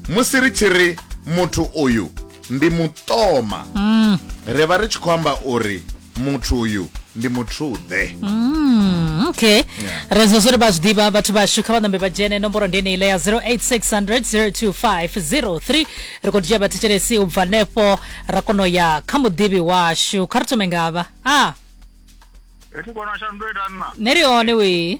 musi ri tshi ri muthu uyu ndi muṱoma mm. ri vha ri tshi khou amba uri muthu uyu ndi muthuḓe mm, okay ri zwo zwori vha zwi ḓivha vhathu vhashu kha vha ṋambe vha dzhene nomboro ndi yeneiḽa ya 0860025003 ri khou dzhia vhathetshelesi u bva hanefho ra kono ya kha muḓivhi washu kha ri thome ngavha a ri kona shandu ita nna ne ri one wee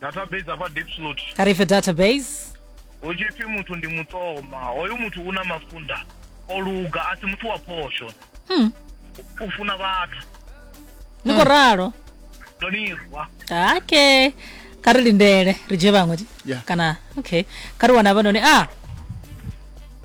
database afha dipsnot Arifa database. hu tshi pfi muthu ndi mutsoma hoyu muthu u na mafunda o luga a si muthu wa phosho Hmm. U- u funa vhathu Ni khou ralo. ndo ni rwa Okay. Kha ri lindele ri dzhie vhaṅwe ti. Yeah. Kana okay. Kha ri wana vhanoni a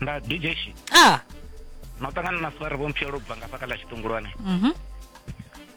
nda dj shi a. no ṱangana na sibari vho mphielo bva nga faka ḽa tshiṱungulwane Mhm.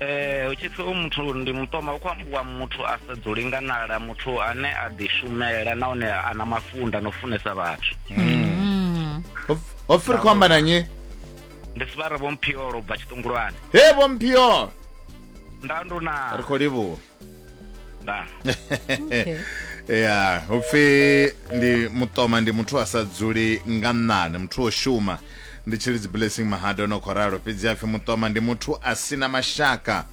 Eh, hu tshi pfi u muthu ndi muṱoma hu khou ambiwa muthu a sa dzo linganala muthu ane a ḓi shumela nahone a na mafunda no funesa vhathu ho firi khou amba na nyi ndi sivhara vho mphiolo bva tshiṱungulwane he vho mphiolo nda ndo na ri khou livhuwa nda okay. ya hupfi ndi muṱoma ndi muthu a sa dzuli nga nnani muthu o shuma ndi tshili dzi blessing mahado no khou ralo fhedzi apfi muṱoma ndi muthu a sina mashaka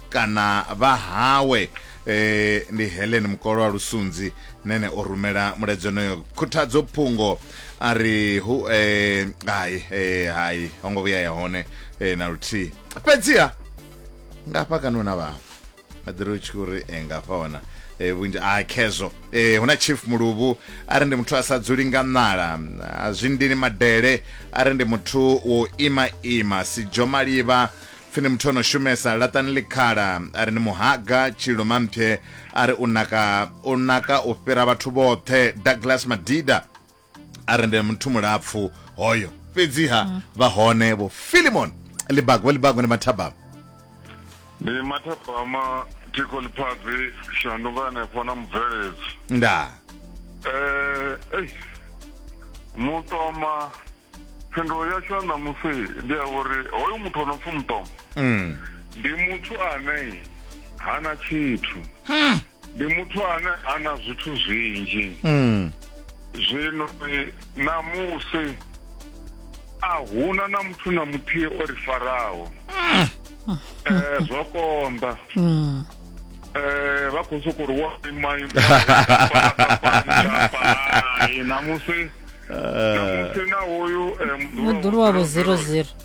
kana vha hawe eh, ndi helen mukolo wa lusunzi nene o rumela mulaedza onoyo khuthadzo phungo a ri hu eh, hai eh, hai ho ngo vhuya ya hone eh, na luthihi fhedziha ngafha kanona vhafa maḓiri tshi uri e nga fha hona e, vhunzhi a khezwo e, hu na chief muluvhu a ri ndi muthu a sa dzuli nga ṋala a zwi ndini madele a ri ndi muthu wo ima ima si dzho malivha pfi ndi muthu ono shumesa laṱani ḽikhala a ri ni muhaga tshilo mamphe a ri u naka u naka u fhira vhathu vhoṱhe douglas madida a rende muthu mulapfu hoyo fhedziha mm. vha hone vho filimon libago libago ndi mathabama ndi mathabama thiko liphavi shanduka hanefho na mubveledzi nda um ei mutoma phindulo yashu ya ṋamusi ndi ya uri hoyu muthu o no pfi mutoma mm. ndi muthu ane hana tshithu hmm. ndi muthu ane ana zwithu zwinzhi mm. zwino namusi a huna na muthu na muthihi o ri faraho um eh, zwo konḓa mm. eh vha khou sokou ri waimaiamusi eh. namusi na hoyu eh, muḓulu wavho zero zero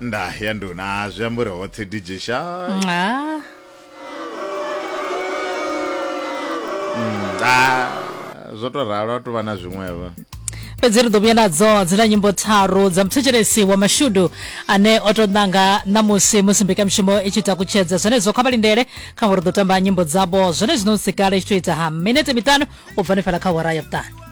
nda ya nduna a zwi amba uri hoṱhe dj sha Ah, nda zwo to ralo a tovha na zwiṅwevho fhedzi ri ḓo vhuya nadzo dzina nyimbo tharu dza muthetshelesi wa mashudu ane o tou nanga ṋamusi musi mbekanyamushumo i tshi takutshedza zwenezwo kha vhalindele kha uri ḓo tamba nyimbo dzavho zwone zwino sikale i tshi tou ita ha minete miṱanu u bva ni fhala kha hora ya vhuṱanu